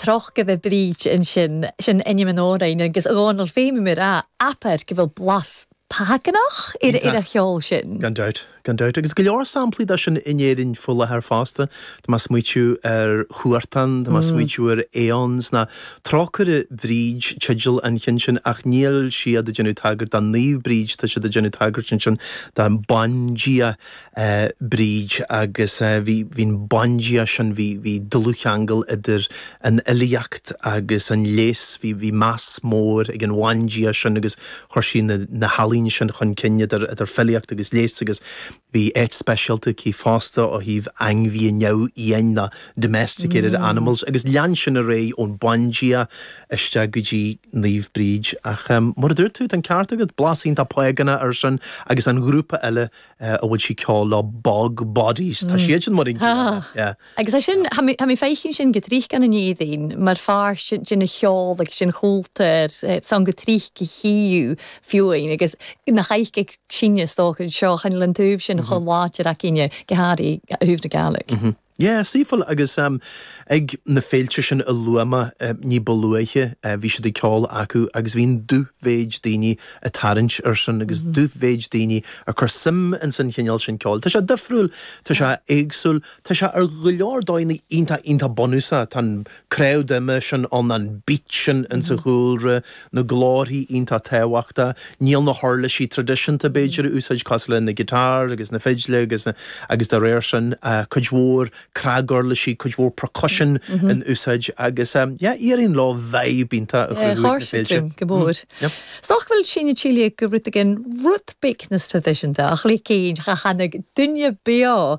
Trócaire Bríd ansin. Sin ainm an amhráin agus a Dhomhnaill féin bhí mé ag rá abair go bhfuil blas págánach ar an cheol sin. Gan dabht, gan dabht. Agus go leor samplaí de sin in Éirinn faoi láthair fosta. Tá mé ag smaoitiú ar Huartan, tá mé ag smaoitiú ar Aeons ná Trócaire Bríd teideal an chinn sin ach níl siad ag déanamh tagairt do Naomh Bríd tá siad ag déanamh tagairt ansin do bandia Bríd, Agus bhí, bhí an bandia sin, bhí, bhí dlúthcheangal idir an fhilíocht agus an leigheas, bhí, bhí meas mór ag an bhandia sin agus chuir sí na, na healaíona sin chun cinn idir, idir filíocht agus leigheas agus bhí áit speisialta aici fosta ó thaobh ainmhithe neamhfhiáin ná domesticated Mm. animals agus lean sin ar aghaidh ón bandia isteach go dtí Naomh Bríd ach mar a dúirt tú, tá an ceart agat, blas iontach págánach ar sin agus an ghrúpa eile An bhfuil sí ceoil nó bog bodies? Tá siad sin mar an gcéanna, yeah. Agus é sin, tha mi faicinn sin gu tric ann an Èirinn mar pháirt sin den cheol agus den chúltur sin gu tric go híú fiúinn agus nach ait ag síneadh is dócha an seo chan eil an taobh sin cho làidir againne gu h-àraidh a thaobh na Gàidhlig. Yeah, saoithiúil agus ehm ag na féilte sin a luaigh mé ehm ní ba luaithe eh bhí siad ag ceol acu agus bhí an dú-mhéid daoine a' tarraingt air sin agus dú-mhéid daoine a' cur suim ins an chineál sin ceoil. Tá sé difriúil, tá sé éagsúil, tá sé ar go leor dóigheanna iontach iontach bunúsach, tá an Craobh de ime sin ann, an beat sin ins a chúlra, na glórthaí iontach tábhachtach. Níl na huirlisí traidisiúnta b'fhéidir in úsáid cosúil le na guitar agus na fidle agus na agus de réir sin cuid mhór cnaguirlisí, cuid mhór percussion in úsáid agus yeah éiríonn leo vibe iontach a chruthú ag na féilte. Go mór. Nach bhfuil sinn a' tilleadh go rud éigin rud beag nas traidisiúnta ach rud éigin a tháinig duine beo?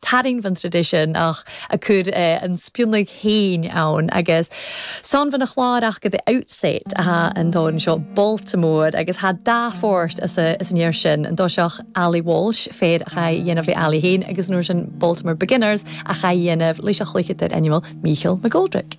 Tarraing bhon tradition ach a cur an spionag féin ann agus 's ann bhon a' chlàr aca The Outset a tha an t-òran seo Baltimore agus tha dà phàirt as a as an fhear sin an toiseach Ali's Waltz fear a chaidh a dhèanamh le Ali fhèin agus an uair sin Baltimore Beginners a chaidh a dhèanamh leis a' chluicheadair ainmeil Michael McGoldrick.